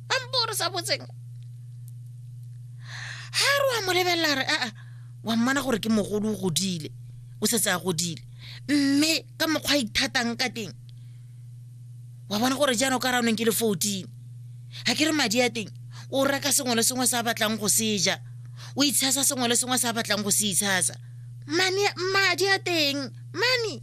ba mpo re sa botseng ga re wa mo lebelela re aa wa mmana gore ke mogolo o godile o setse a godile mme ka mokgwa a ithatang ka teng wa bona gore jaanong ka ranong ke le fourteen ga ke re madi a teng o reka sengwe le sengwe se a batlang go se ja o itshasa sengwe le sengwe se a batlang go se itshasa madi a teng mane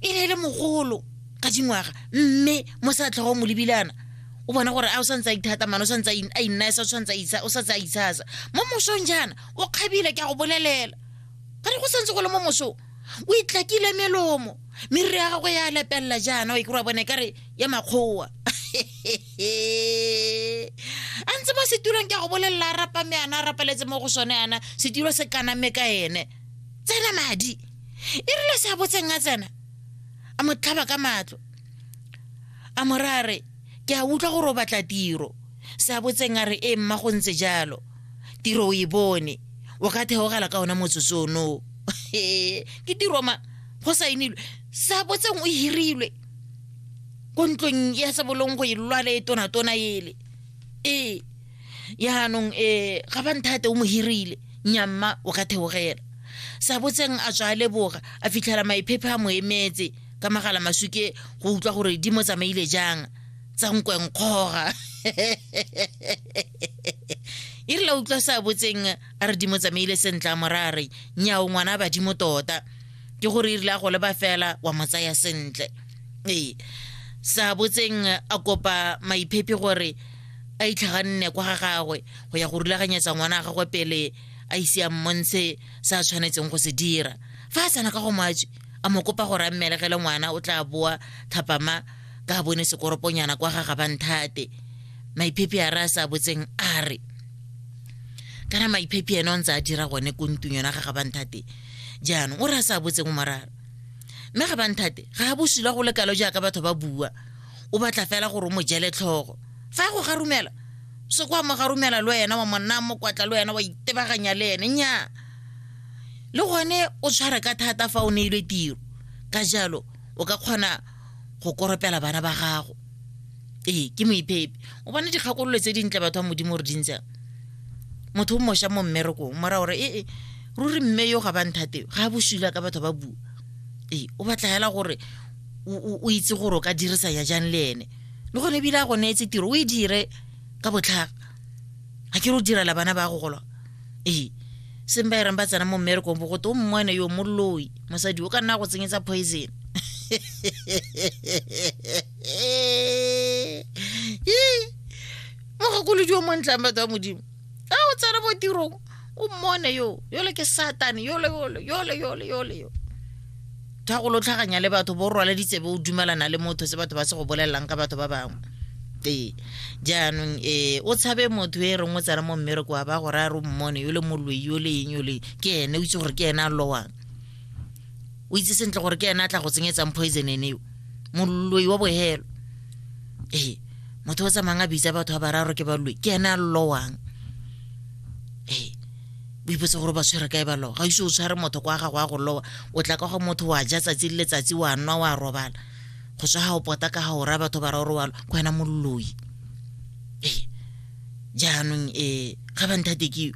e ne e le mogolo ka dingwaga mme mo sa tlhogo mo lebilana o bona gore a o santse a ithata mane o santse a innaesa o santse a itshasa mo mosong jaana o kgabile ke a go bolelela ga re go santse go le mo mosong o itlakile melomo meriri ya gagwe ya lepelela jaana o e kry bone ka re ya makgowa a ntse mo setulong ke a go bolelela a rapa me ana a rapaletse mo go sone ana setulo se kaname ka ene tsena madi e rile se a botseng a tsena a mo tlhaba ka matlo a morare ke a utlwa gore o batla tiro se a botseng a re e mma go ntse jalo tiro o e bone o ka theogela ka ona motsotso ono ke tiro ma go saenilwe se a botseng o hirilwe ko ntlong ya sebolong go e lwale e tonatona ele ee yaanong um ga ba nthate o mo hirile nyamma o ka theogela sa botseng a tswa a leboga a fitlhela maiphephe a mo emetse ka magala masuke go utlwa gore di mo tsamaile jang tsa nkwenkgoga e rile utlwa sa botseng a re di mo tsamaile sentle a morare nyao ngwana badimo tota ke gore e rile a go leba fela wa mo tsaya sentle ee sa botseng a kopa maiphephe gore a itlhaganne kwa ga gagwe go ya go rulaganyetsa ngwana wa gagwe pele a ise a mmontshe se a tshwanetseng go se dira fa a tsena ka go matswe a mo kopa gore a mmelegele ngwana o tla boa thapama ka a bone sekoroponyana kwa ga gabanthate maiphepi a re a sa botseng a re kana maiphepi ene o ntse a dira gone ko ntung yona ga gabanthate jaanong o re a sa botseng o morara mme gabanthate ga a bosula go lekalo jaaka batho ba bua o batla fela gore o mo jele tlhogo fa ya go garumela se kwa mo garumela le wena wa monna mo kwatla le wena wa itebaganya le ene nya le gone o tshware ka thata fa o neilwe tiro ka jalo o ka kgona go koropela bana ba gago ee ke moiphepi o bona dikgakololo tse dintle batho ba modimo re dintsang motho o moša mo mmerekong mora gore ee ruri mme yo ga ba nthate ga a bosula ka batho ba bua ee o batla fela gore o itse gore o ka dirisanya jang le ene le gone ebile a go neetse tiro o e dire ka botlhaga ga ke re o direla bana ba go golwa ee seng ba ereng ba tsena mo mmerekong bo gote o mmone yo moloi mosadi o ka nna go tsenyetsa poison mogakolodio montlang batho ba modimo a o tsena mo tirong o mmone yo yole ke satane yole yole yole yole yole yo tha go lotlhaganya le batho bo rwala ditsebe o dumelana le motho se batho ba se go bolelelang ka batho ba bangwe ee jaanong ee o tshabe motho e reng o tsena mo mmereko wa ba gore a re o mmone yole moloi yole eng yole ke ene o itse gore ke ene a lowang o itse sentle gore ke ena a tla go tsenyetsang poison ene eo moloi wa bohelo ee motho o tsamayng a bitsa batho ba bararo ke baloi ke ene a llowang ee o ipotse gore ba tshwere kae ba lowa ga ise o tshware motho kwa gago ya go lowa o tla ka go motho wa ja tsatsi le letsatsi wa nwa wa robala go tswa ga o pota ka ga o raya batho bararo wa lo ke wena moloi jaanong um ga ba nthate ke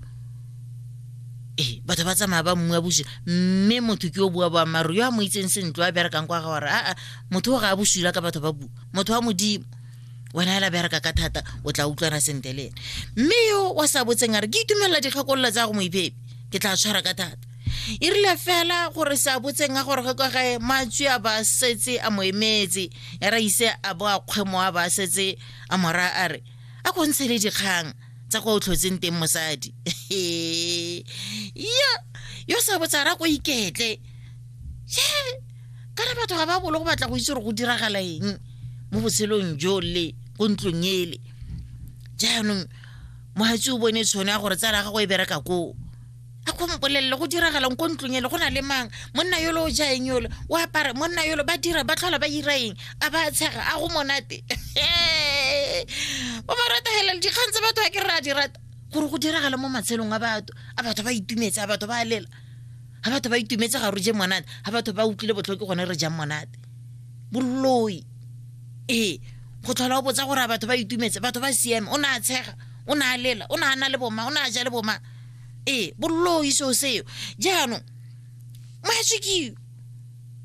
ee batho ba tsamaya ba mmua boswi mme motho ke o bua boammaaruri yo a mo itseng sentle a berekang kwa ga gore aa motho o ga a boswila ka batho ba bua motho wa modimo wena ela bereka ka thata o tla utlwana sentle le ene mme yo wa sa botseng a re ke itumelela dikgakololo tsa go moiphepe ke tla tshwara ka thata e rile fela gore sa botseng a gore ge kwa gae matswi a ba setse a mo emetse ya ra ise a bo a kgwemo a ba setse a mora a re a ko ntshe le dikgang tsa kwa o tlhotseng teng mosadi ya yo sa botsara ko iketle ye kana batho ga ba bolo go batla go itse gore go diragala eng mo botshelong jo le ko ntlong ele jaanong mohatsi o bone tshone ya gore tsala ya gago e bereka koo a go mpolelele go diragalang ko ntlong ele go na le mang monna yolo o jaeng yolo o apara monna yolo ba dira ba tlhola ba ira eng a ba tshega a go monate ba ba rata fela le dikgang tse batho ba ke re a di rata gore go diragala mo matshelong a batho a batho ba itumetse a batho ba lela a batho ba itumetse ga re je monate a batho ba utlwile botlhoke gone re jang monate boloi ee go tlhola o botsa gore a batho ba itumetse batho ba siame o ne a tshega o ne a lela o ne a na le boma o ne a ja le boma ee bollo o ise o seo jaanong matso ke eo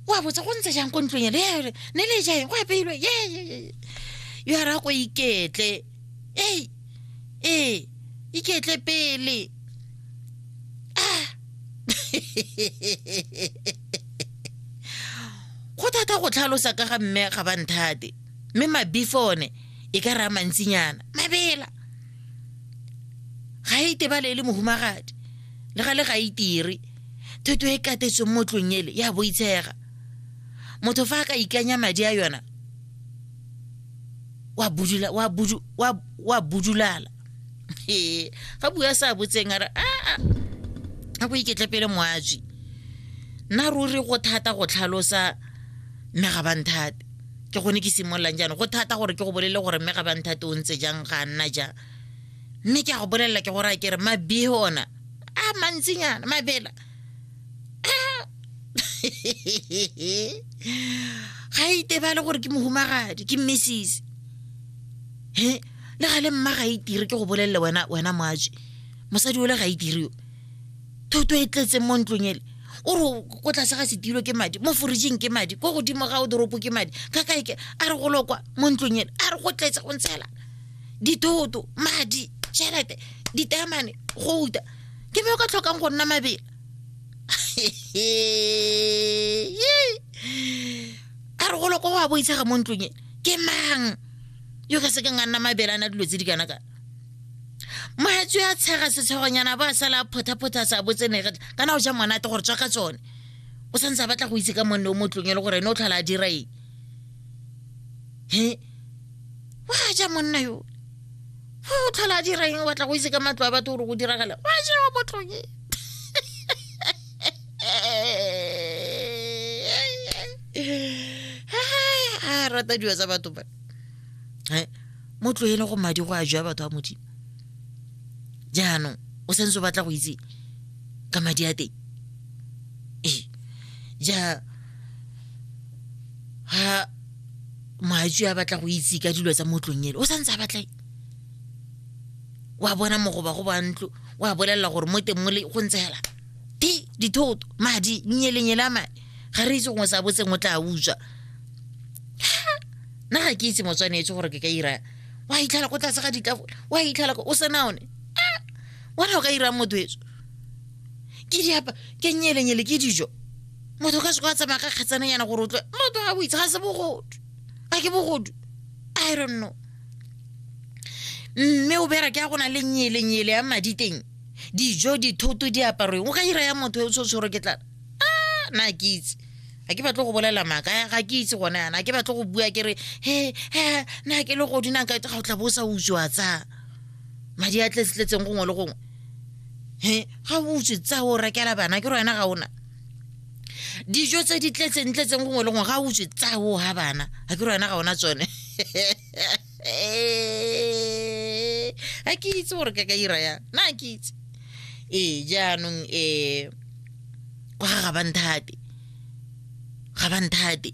wa botsa go ntse jang ko ntlong ele ere ne le jaeng go apeilwe ye ye, ye, ye. yo a raya ko iketle ei ee iketle pele Ah. go thata go tlhalosa ka ga mme ga ba nthate mme mabifone e ka raya mantsinyana mabela ga e tebale e le mohumagadi le ga le ga itire thoto e katetsweng mo tlong ele ya boitshega motho fa a ka ikanya madi a yona wa budula wa budu wa wa budulala ee ga bua sa botseng a re a a go iketle pele moatswi nna ruri go thata go tlhalosa mme ga ba nthate ke gone ke simololang jaanong go thata gore ke go bolele gore mme ga ba nthate o ntse jang ga nna jang mme ke a go bolelela ke gore a kere mabee ona a mantsinyana mabela ga e itebale gore ke mohumagadi ke mmesise he le ga le mma ga itire e ke go bolelele wena wena moaje mosadi o le ga itire e yo thoto e tletseng mo ntlong ele o re ko tlase ga setilo ke madi mo forijing ke madi ko godimo ga o doropo ke madi ka kae ke a re go lokwa mo ntlong ele a re go tletse go ntshela dithoto madi tšhelete ditamane go uta ke me o ka tlhokang go nna mabele a re golo ko go a boitshega mo ntlong e ke mang yo ka sekeng a nna mabelana dilo tse di kana kana mohetso ya tshega setshegonyana ba sala a phothaphotha sa botsenege kana o ja monate gore tswa ka tsone o santse a batla go itse ka monne o mo tlong e le gore ene o tlhola a dira eng he wa ja monna yo o tlhola a dira eng o batla go itse ka matlo a batho gore go diragala wa ja wa mo tlong e a rata dilo tsa batho ba mo tloele go madi go a jwa batho ba modimo jaanong o santse o batla go itse ka madi a teng ee ja ga moatsi a batla go itse ka dilo tsa motlong ele o santse a batla wa bona mogoba go ba ntlo wa bolelela gore mo teng mole go ntse fela di dithoto madi nnyelenyele a madi ga re itse gongwe sa botseng o tla utswa nna ga ke itse motswanetse gore ke ka ira wa itlhala ko tlase ga ditafola wa itlhala o sena one ah! wena o ka irang motho etso ke diapa ke nyelenyele ke dijo motho ka seko a tsamaya ka kgetsananyana gore o tlwe motho ga boitse ga se bogodu a ke bogodu i don't know mme o bera ke a go na le nyelenyele ya madi teng dijo dithoto diaparo o ka ira ya motho e o se o tshwere ke tlana a na ke itse ga ke batle go bolela maaka ya ga ke itse gone yana ke batle go bua ke re he he na ke le godinang ka ga o tla bo o sa utswa tsa madi a tletsetletseng gongwe le gongwe he ga o utswe tsa o rekela bana ke re wena ga ona dijo tse di tletseng tletseng gongwe le gongwe ga o utswe tsa o ga bana ga ke re wena ga ona tsone Eh, a ke itse gore ka ka ira ya na ke itse ee jaanong um kwa ga ga banthate ga banthate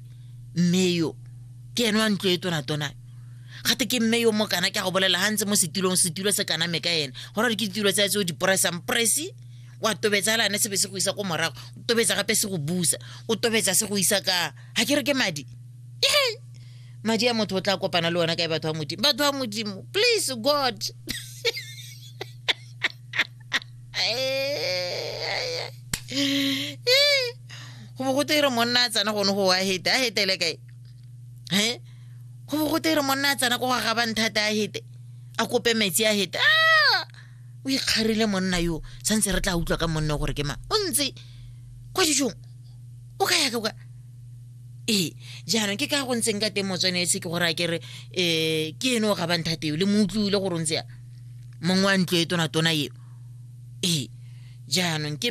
mme yo ke ene wa ntlo e tonatona gate ke mme yo mo kana ke a go bolela ga ntse mo setulong setulo se kaname ka ene gona re ke ditulo tsa tse o di poresang presi wa tobetsa fela ne sebe se go isa ko morago o tobetsa gape se go busa o tobetsa se go isa ka ga ke re ke madi madi a motho o tla kopana le ona kae batho ba modimo batho ba modimo please god go bo go teire monna a tsena gone go a hete a hetele kae e go bo go teire monna a tsena ko go gaba nthata a hete a kope metsi a hete a o ikgarile monna yo santse re tla utlwa ka monne gore ke mang o ntse kwa dijong o ka ya ka ee jaanong ke ka go ntseng ka teng motswane ese ke gore a kere um ke ene o ga banthateo le mo utlwile gore o ntse ya mongwe wa ntlo e tonatona eo ee jaanong ke